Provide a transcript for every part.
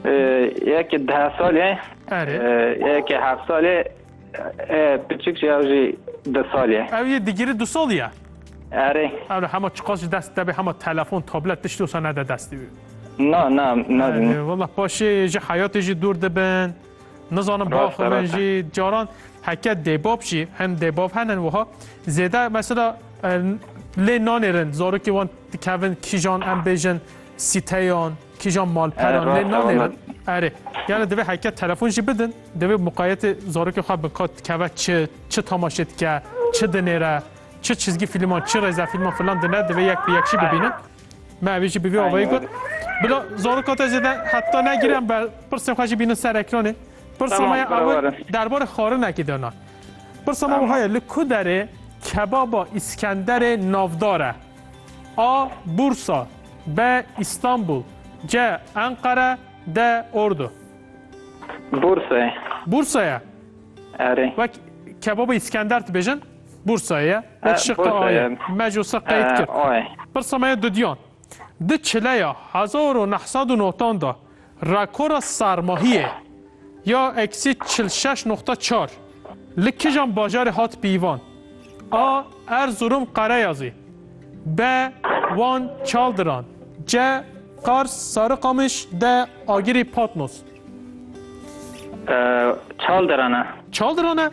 Yekê deh salê, Erê. yekê heft salê, e, piçik jî ew jî du salê. Ew yê digirî du sal ye. Erê. Ew ne hema çiqas ji dest debe hema telefon, tablet tiştî wisa nede destê wî. Na, na, na. Erê, Wallah paşê ji heyatê jî dûr dibin. Nizanim Rast e, baxivin rast e. jî caran heke dêbav jî hin dêbav henin wiha zêde mesela e, lê nanêrin zarokê wan dikevin kîjan em bêjin sîteyan Kîjan malperan lê nanêrin. Erê. Yani divê heke telefon jî bidin, divê muqayetê zarokê xwe bin ka dikeve çi, çi tamaşe dike, çi dinêre, çi çizgî filman, çi rêzefilman filan dine, divê yek bi yek jî bibînin. Me evî jî bi vî avayî got. Bila zaroka te zêde heta negire em be pirsên xwe jî bînin ser ekranê. Pirsa me ya ew derbarê xwarinekî de na. Pirsa me wiha ye li ku derê kebaba Îskenderê navdar e. A, Bursa B, Îstanbul C, Enqere D, Ordu Bursa ye. Bursa ye? Erê. Wek kebabê Îskender dibêjin Bursa ye. Wek şiqe A ye. Me ji wisa qeyd kir. Pirsa me ye dudiyan. Di çileya hezar û neh sed û notan de Rakora sermahiyê ya eksî çil û şeş noqta çar li kijan bajarê hat pîvan? A. Erzurum Qereyazî B. Wan Çaldiran C. Qars Sarıkamış D. Agirî Patnos Çaldiran e. Çaldiran e?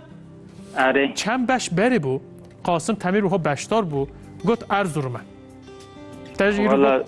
Erê. Çend beş berê bû Qasim Temîr wiha beşdar bû got Erzurum e. Te jî îro Wala- got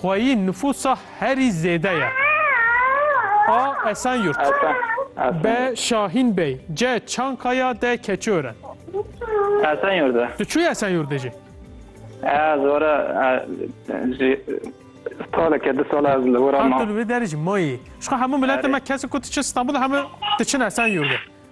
Xweyî nifûsa herî zêde ye. A. Esenyurt B. Şahîn Bey C. Çankaya D. Keçiören Esenyurt e. Tu çûyî Esenyurdê jî? Ez wara jî saleke du sala ez li wira ma. Tu li vê derê jî mayî. Ji xwe hemû miletên me kesin ku tu çi Stenbolê hemû diçin Esenyurdê.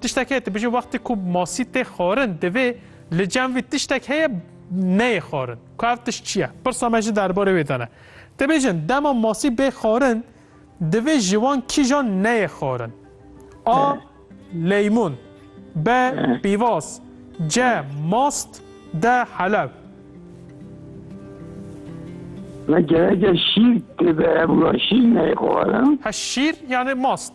Tiştek heye dibêje wextê ku masî tê xwarin divê li cem vî tiştek heye neyê xwarin. Ku ev tişt çi ye? Pirsa me jî derbarê wê de ne. Dibêjin dema masî bê xwarin divê ji wan kîjan neyê xwarin? A. Leymûn B. Pîvaz C. Mast D. Helew Me gereke şîr tê de ev şîr neyê xwarin. He şîr yanê mast.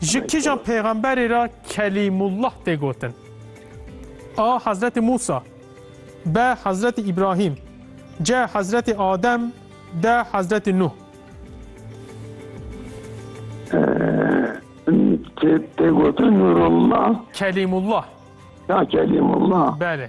Ji kîjan pêxemberê re Kelîmullah tê gotin? A. Hezretî Mûsa B. Hezretî Îbrahîm C. Hezretî Adem D. Hezretî Nuh Tê gotin Nûrullah Kelîmullah Ya Kelîmullah Belê